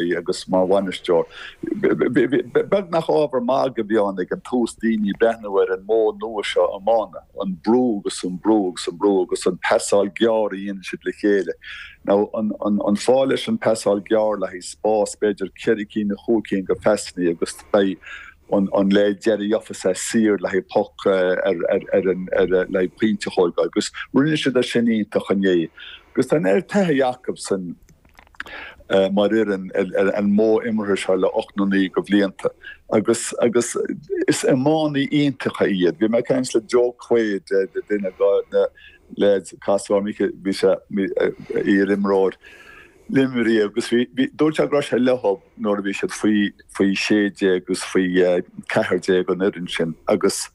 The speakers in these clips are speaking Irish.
í agus mar bhainisteoir. Beag nach ábhar magaidh a bhí ann ag an tús daoine breathnú ar an modh nua seo iomána, an brú agus an brú agus an brú agus an pasáil gearr a dhéanann siad le chéile. Now, an fáth leis an pasáil gearr le haghaidh spás, b'fhéidir ceithre cinn nó chúig cinn go phasannaí agus beidh an leaid deiridh ag seasamh saor le haghaidh poc ar an le haghaidh pointe a thógáil agus rinne siad é sin iontach inné. Agus tá an oiread taithí acu san. mar fhoireann ar an modh imeartha seo le ocht nó naoi go bhlianta agus agus is iománaí iontacha iad. Bhí mé ag caint le Joe Quaid duine de na leaids casúr Nickie bhí sé iarimreoir Luimnigh agus bhí bhí dúirt sé go raibh sé leo nuair a bhí siad faoi faoi sé déag agus faoi ceathair déag an fhoireann sin agus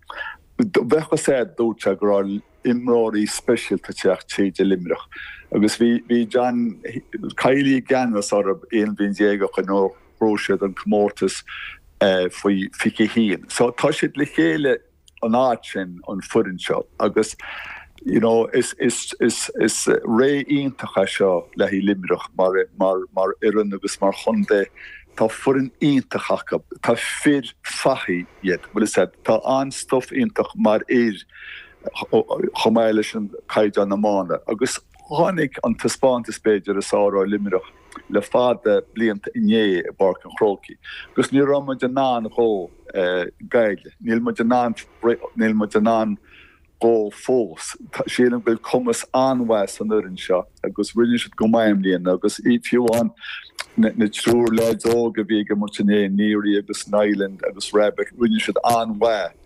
bheadh a fhios agat dúirt sé go raibh imreoirí speisialta ag teacht tríd i Luimneach agus bhí John Kiely i gceannas orthu aon bhliain déag ó shin nuair a ghnóthaigh siad an comórtas faoi fiche a haon. So tá siad le chéile an fhaid sin an foireann seo agus you know is is is is ré iontach é seo le haghaidh Luimneach mar mar mar fhoireann agus mar chontae Tá foireann iontach acu Tá fir fathaigh iad bhfuil a fhios agat tá an-stuif iontu mar fhir chomh maith leis an caighdeán iomána agus tháinig an taispeántas b'fhéidir is fhearr ó Luimneach le fada blianta inné i bPáirc an Chrócaigh agus ní raibh muid in ann dhó Gaillimh níl muid in ann níl muid in ann dhó fós. Sílim go bhfuil cumas an-mhaith san fhoireann seo agus rinne siad go maith i mbliana agus fiú amháin na triúr leaids óga a bhí ag imirt inné, Neary agus Niland agus Rabbitte, rinne siad an-mhaith.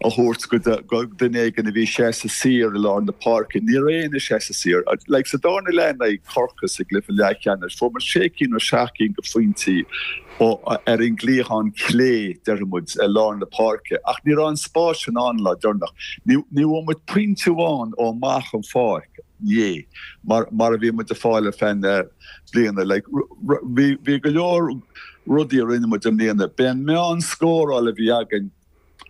a thabhairt go duine éigin a bhí seasamh saor i lár na páirce. Ní raibh éinne seasamh saor. Like sa darna leath in aghaidh Corcaigh sa gcluiche leathcheannais, fuair muid sé cinn nó seacht cinn go phointí ó ar an gcliathán clé, déarfaidh muid, i lár na páirce. Ach ní raibh an spás sin ann an lá deireanach. Ní bhfuair muid pointe amháin ó amach an pháirc, inné, mar mar a bhí muid a fháil ar feadh na bliana. Like bhí bhí go leor rudaí a rinne muid i mbliana. B'é an meán scóráil a bhí againn.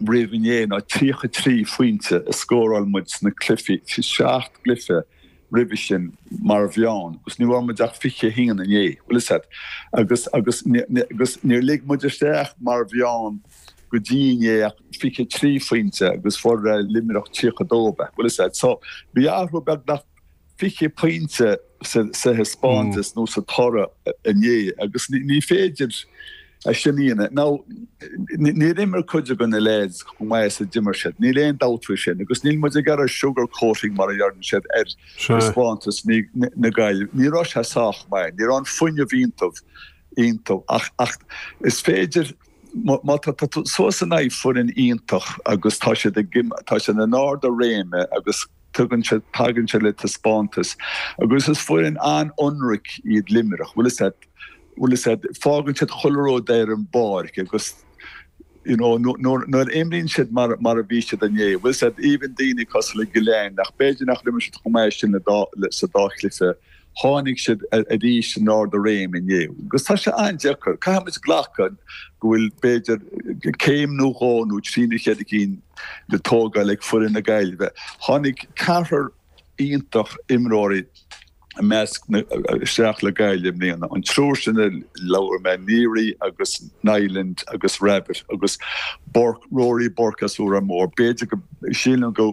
roimh inné ná 33 phointe a scóráil muid sna cluichí, 7 gcluiche roimhe sin mar mheán agus ní bhfuair muid ach 21 inné, bhfuil a fhios agat. Agus agus agus níor lig muid isteach mar mheán go dtí inné ach 23 phointe agus fuair Luimneach 32, bhfuil a fhios agat. So bhí athrú beagnach 20 pointe sa thaispeántas nó sa toradh inné agus ní féidir a shéanadh. Ná níor imir cuid de na leaids chomh maith is a d'imir siad. Níl aon dabht faoi sin agus níl muid ag iarraidh sugar coating mar a deireann siad ar thaispeántas na Gaillimhe. Ní raibh sé sách maith. Ní raibh an fuinneamh iontu ach ach is féidir má tá tú suas in aghaidh foireann iontach agus tá siad ag tá siad in ard a réime agus Tagann sé, tagann sé le taispeántas agus is foireann an-ionraic iad Luimneach. Bhfuil a fhios, bhfuil a fhios agat, fágann siad chuile rud ar an bpáirc agus, you know, nuair, nuair, nuair a imríonn siad mar, mar a bhí siad inné, bhfuil a fhios agat, even daoine cosúil le Gillane ach b'fhéidir nachar imir siad chomh maith sin le dá, le, sa dá chluiche Tháinig siad arís in ard a réim inné agus tá sé an-deacair. Caithfimid glacadh go bhfuil b'fhéidir céim nó dhó nó trí nó ceithre cinn le tógáil ag foireann na Gaillimhe. Tháinig ceathrar iontach imreoirí i measc na isteach le Gaillimh i mbliana. An triúr sin a labhair mé, Neary agus Niland agus Rabbitte agus Burke, Rory Burke as Órán Mór. B'fhéidir go síleann go